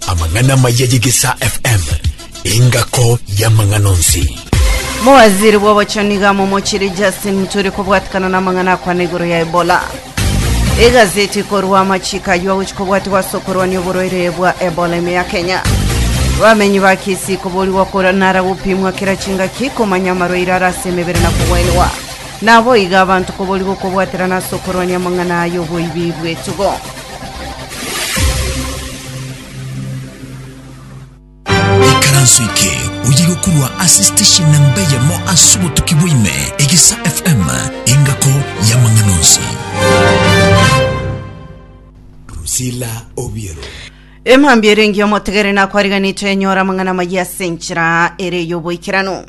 Amang'ana amaya y'egesaa FM, engako y'amang'ana onsi. Mowaziri bw'obochoni iga momochiri Justin Muturi kobwatikana n'amang'ana akwana igoro ya Ebola. Egazeti korwa amachiko ayio agochi kobwatigwa ase okorwania oborwaire bwa Ebola ime ya Kenya. Bamenyi ba Kisii koborigwa kora nara gopimwa kera chingaki komanya amarwaire ara ase emebere na kogwenigwa. Naboigo abanto koboria gokobwaterana ase okorwania amang'ana aya oboibi bw'etugo. Ekaranso eke oye gokurwa ase station namba eyemo ase obotuki bwaime egesa FM engako ya mang'ana onsi. Drusilla Obiero. Emambia erenge omotegere nakwariganete enyora amang'ana amayia ase enchera ere y'oboikeranu.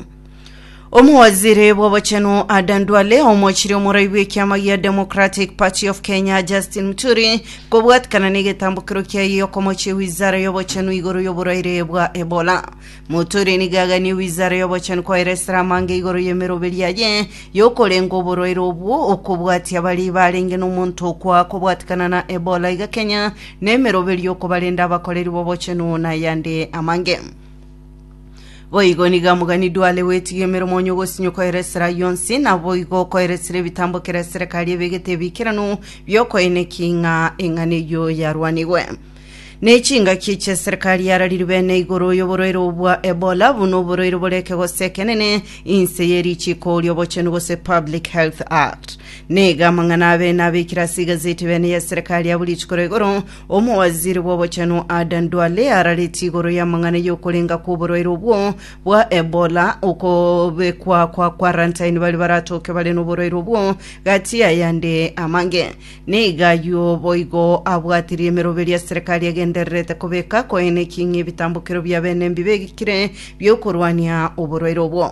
Omowaziri bw'obochenu Adan Duale omochire omorai bw'ekiama gia Democratic Party of Kenya Justin Muturi kobwatikana n'egetambokero kiaye okomochia wizara y'obochenu igoro y'oboraire bwa Ebola. Muturi nigo aganie wizara y'obochenu koeresera amange igoro y'emeroberi yaye y'okorenga oboraire obwo okobwatia bari barenge n'omonto okwa kobwatikana na Ebola iga Kenya n'emeroberi y'okobarenda abakoreri b'obochenu na yande amange. Boigo nigo amogani dwale gwetiga emeremo onye ogosinyo koera esera yonsi, na boigo koera esera ebitambo kera esera kari ebegete ebikeranu biokoina eking'a eng'ana eyio yarwanigwe. Ne chingaki echi eserikari yarariri bene igoro y'oborwaire obwa Ebola buna oborwaire bore ekegose ekenene inse ye richiko oria obochenu gose Public Health Act. Nega amang'ana abene abekire ase igazeti bene y'eserikari ya buri chikoro igoro Omowaziri bw'obochenu Adan Duale araretie igoro y'amang'ana y'okorenga kw'oborwaire obwo bwa Ebola, okobekwa kwa quarantine baria baratoke bare noborwaire obwo, gati y'ayande amange. Nigo ayio boigo abwatirie emeroberi ya serikali egendererete kobeka koene eking'e ebitambokero bia bene mbibe egikire bi'okorwania oborwaire obwo.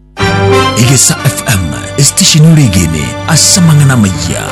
Egesa FM, esitesheni ore egene ase amang'ana amayia.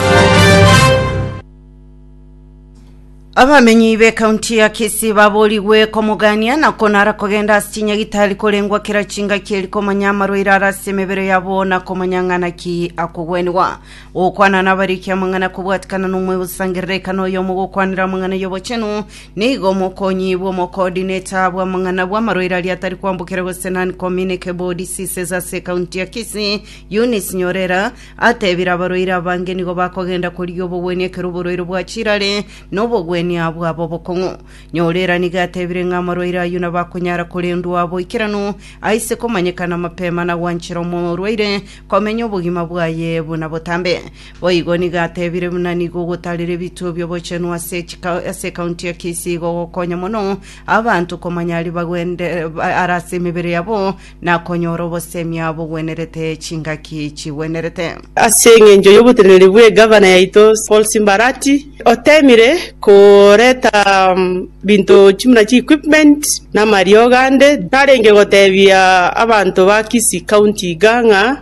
Abamenyi b'ekaunti ya Kisii baborigwe komogania na konara kogenda ase chinyagitari korengwa kera chingaki eri komanya amarwaire ara ase emebere yabo na komanya ng'ana ki akogwenigwa. Gokwana nabarikia amang'ana kobwatikana nomoyo bosangerera ekana oyomo gokwanera amang'ana y'obochenu Nigo omokonyi bw'omokoodineta bw'amang'ana bw'amarwaire aria atari kwambokera gose Non-Communicable Bowel Diseases ase ekaunti ya Kisii, Eunice Nyorera, atebire abarwaire abange nigo bakogenda korigia obogwenia ekero oborwaire bwachirare na obogwenia bwaba obokong'u. Nyorera nigo atebire ng'a amarwaire ayio nabo akonyara korendwa boikeranu aise komanyekana mapema na gwanchera omorwaire komenya obogima bwaye buna botambe. Boigo nigo atebire buna nigo ogotarire ebituo bi'obochenu ase chika- ase ekaunti ya Kisii igogokonya mono abanto komanya aria bagwende ba- ara ase emebere yabo na konyora obosemia bogwenerete chingaki chigwenerete. Ase engencho y'oboteneneri bwe gavana yaito Paul Simba Arati, otemire koreta binto chimuna chi equipment na amariogo ande tarenge gotebia abanto ba Kisii county iga ng'a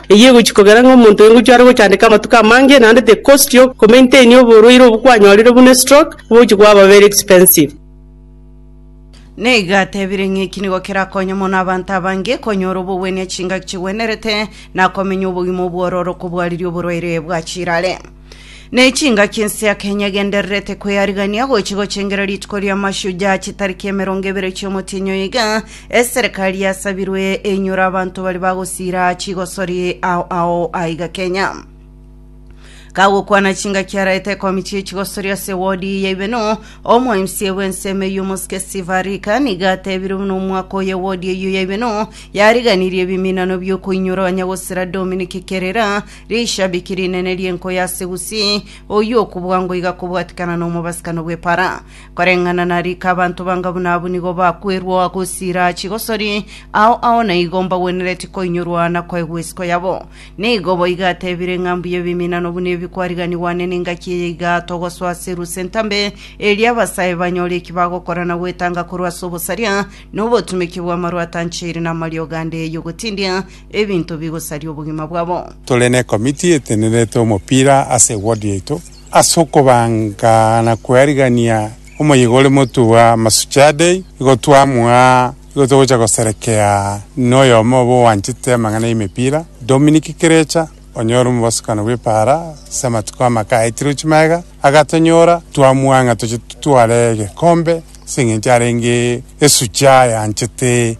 Eyio egochia kogera ng'a omonto engochwa are gochandeka amatuko amange, naende tekostogia okomaintainia oborwaire obwo kwanyorire buna estroke, obogochia kwaba very expensive. Nigo atebire ng'a eki nigo kerakonye mono abanto abange konyora obogwenia chingaki chigwenerete, na komenya obogima obwororo kobwariria oborwaire bwa chirare. Ne chingaki ense ya Kenya egendererete kweyarigania gochi gochengera rituko ria Mashujaa chitariki emerongo ebere chiomotienyi oyo iga eserekari yasabirwe enyora abanto bari bagosira chigosori ao ao aiga Kenya kagokwana chingaki araete ekomiti y'echigosori ase wodi ya ibeno omo mca bw'ense emeyio omosike steve arika niga atebire buna omwaka oyo ewodi eyio ya ibeno yariganirie ebiminano biokoinyora abanyagosira dominic kerera Rishabiki rinene ri'enko ya Zeusi, oyio okobua ngoiga kobwatikana n'omobasibkano bw'epara. Koreng'ana na rika abanto banga buna abwo nigo bakwerwa gosira chigosori ao ao na igo mbagwenereti koinyorwa na koegwa isiko yabo. Nigo boiga atebire ng'a mbuya ebiminano buna ebi kwariganigwa ane n'engaki eye iga togosoa Zeusi entambe, erio abasae banyore eki bagokora na gwetanga korwa ase obosaria na obotumeki bw'amarwatancheiri na amariogo ande y'ogotindia ebinto bigosaria obogima bwabo. Tore ne committee etenerete omopira ase eward yaito ase okobanga na koarigania omoyega ore motugwa Masuchaa Day igo twamua igo togocha goserekea noyomo obo oanchete amang'ana y'emepira Dominic Kirecha onye ore omobosokano bw'epaara ase amatuko amake aetire chimaega agatonyora twamua ng'a toche totware egekombe ase eng'encho arenge esuchaa yanchete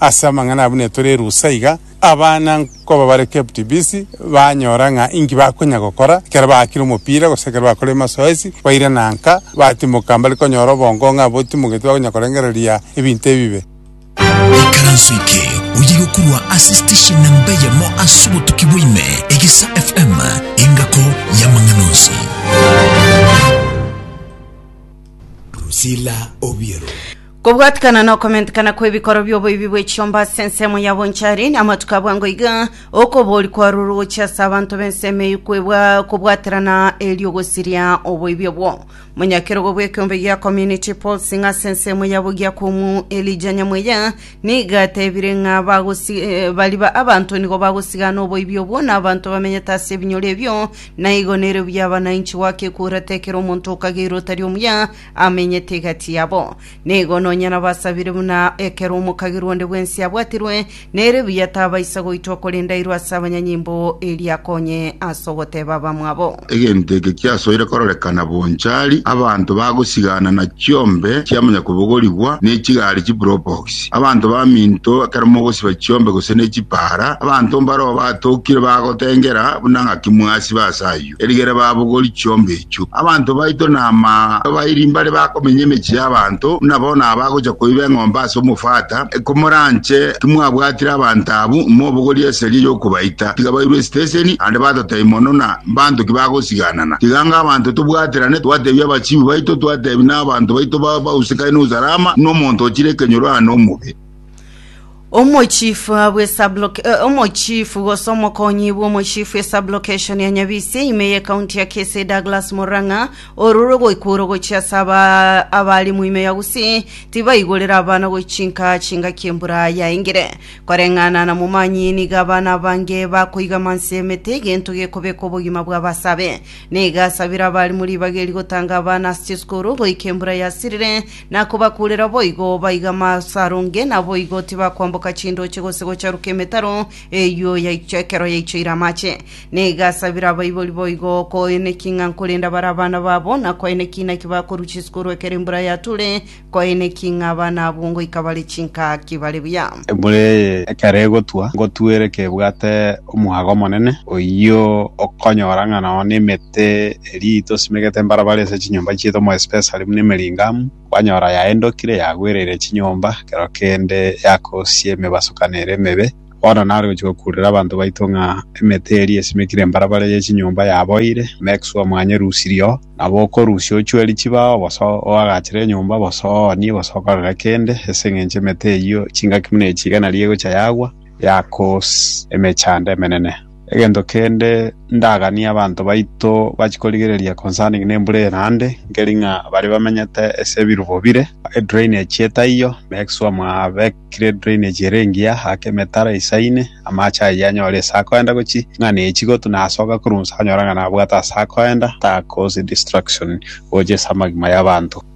Ase amang'ana abwo netore erusa iga, abana nkoba bare kept busy, banyora ng'a inki bakonya gokora ekero baakire omopira gose ekero bakorire masoesi, bairana nka, batimoka mbare konyora obongo ng'a botimogeti bakonya korengereria ebinto ebibe. Ikaranso eke oye gokurwa ase station nemba eyemo ase obotuki bwa ime, Egesa FM, engako y'amang'ana onsi. Drusilla Obiero. Kobwatikana nokomentekana kw'ebikoro bi'oboibi bwe chiomba ase ensemo ya bonchari, na amatuko abwango iga, okobori kwarurwe gochia ase abanto b'ensemo eyio kwebwa kobwaterana erio gosiria oboibi obwo. Monyakerogo bw'ekeombe gia Community Pulsing ase ensemo ya Bogiakumu Elijah Nyamueya nigo atebire ng'a bagosi eh, bariba abanto nigo bagosigana oboibi obwo na abanto bamenyete ase ebinyoro ebio, na igo nerio biaba nainchi goaka ekura tekera omonto okageirwe otari omuya amenyete egati yabo. Nigo nonya nabasabire buna ekero omokagera onde bwensi abwatirwe, nere buya tabaisa goitwa korende airwe ase abanyanyimbo erio akonye ase ogoteba abamwabo. Egento eke kiasoire kororekana bonchari, abanto bagosigana na chiombe chia monyakobogorigwa ne chigari chipropox. Abanto baminto, ekero mogosiba chiombe gose ne chipaara, abanto mbareo batokire bagotengera buna ng'aki mwasiba ase ayio. Erigere babogori chiombe echio. Abanto baito nama abairi mbare bakomenya emechie y'abanto, buna bono abagocha koiba eng'ombe ase omofata. Komoranche timwabwatire abanto abwo, mobogorie eseria y'okobaita. Tiga bairwe esiteseni, naende batotai mono na mbanto ki bagosiganana. Tiga anga abanto tobwaterane, twatebia abachibi baito, twatebi n'abanto baito bause kae n'usalama, buna omonto ochire ekenyoro aane omobe. Omochifu bwe subloc- eh, omochifu gose omokonyi bw'omochifu e sublokeshon ya Nyabisi ime ye kaunti ya Kisii Douglas Murang'a ororwe goikworo gochia ase aba- abalimu ime ya Gusii tibaigorera abana gochinka chingaki embura yaengire. Koreng'ana na Momanyi nigo abana abange bakoigama anse y'emete egento gekobeka obogima bw'abasabe. Nigo asabire abalimu ribaga eri gotanga abana ase chisukuru goika embura yasirire na kobakuurera boigo, baiga masaronge, naboigo tibakwamboka chindooche gose gocharuka emetaro eyio yaichwe ekero yaichoire amache. Na egasabera abaibori boigo, koeneki ng'a nkorenda bare abana babo, na koeneki naki bakorucha isiko korwa ekero embura yatule, koeneki ng'a abana abwo ngoika bare chinkaki bare buya. Embura eye ekero egotwa, ngotuere kebwate omwaga omonene, oyio okonyora ng'a nao nemete Erio tosimegete mbarabara ase chinyomba chiaito more especially buna emering'amu, kwanyora yaendokire yagwereire chinyomba ekero kende yakosia emebasokano ere emebe. Bono nare gochia gokurera abanto baito ng'a emete eria esimekire embarabara ye chinyomba yaboire, make sure mwanye rusirie oo. Nabo okorusia ochueri chibao bosa oagachere enyomba bosa oonie bosa okorere kende ase eng'encho emete eyio chingaki buna echi iga nario egocha yagwa, yakoos emechando emenene. Egento kende ndaganie abanto baito bachie korigereria concerning nembura eye naende, nkeri ng'a baria bamenyete ase ebirubo bire, edrainage etaiyo, make sure mwabekire edrainage ere engiya, aka emetaro eisaine, amache ayio anyore ase akoenda gochia, ng'a nechi gotu nasoka korwa inse anyora ng'a nabwate ase akoenda, takosi distraction gocha ase amagima y'abanto.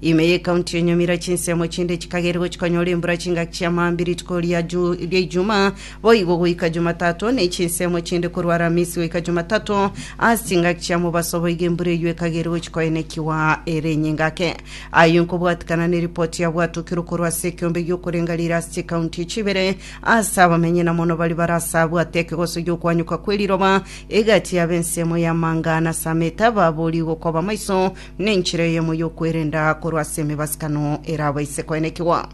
Ime y'Ekaunti ya Nyamira chinsemo chinde chikageria gochia konyora embura chingaki chia maambia rituko ria ju- ria Ijumaa boigo goika Jumatato, ne chinsemo chinde korwa Aramisi goika Jumatato. Ase chingaki chia mobaso boigo embura eyio ekageria gochia koenekigwa ere enyingake. Ayio nkobwatikana neripoti yabwatokirwe korwa ase ekeombe gi'okorenga rire ase chikaunti echi ibere ase abamenyi na mono baria bare ase abwate ekegoso gi'okwanyoka kw'eriroba egati y'abensemo y'amanga na Sameta baboorigwe koba maiso Nenchera eyemo y'okwerenda korwa ase emebasikano erabaise koenekigwa.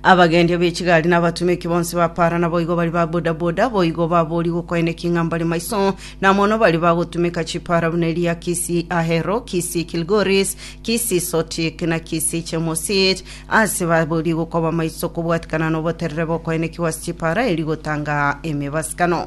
Abagendi ab'echigari na abatumeki bonsi ba para naboigo bari ba bodaboda boigo baboorigwe okoeneki ng'a mbare maiso na mono bari bagotumeka chipara buna eria Kisii Ahero, Kisii Kilgoris, Kisii Sotik na Kisii Chemosit ase baboorigwe koba maiso kobwatikana noboterere bokoenekigwa ase chipara eria gotanga emebasikano.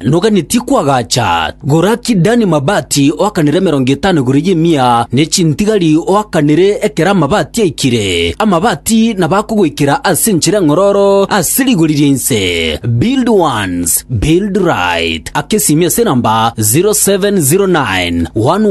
Noganetie kwagacha Goraki Dani mabati oakanere emerongo etano igoro y'emia, ne chintigari oakanere ekero amabati aikire. Amabati nabo akogoikera ase enchera eng'ororo ase rigori ria inse. Build Once, Build Right, akesiimia ase enamba 0709 118 118.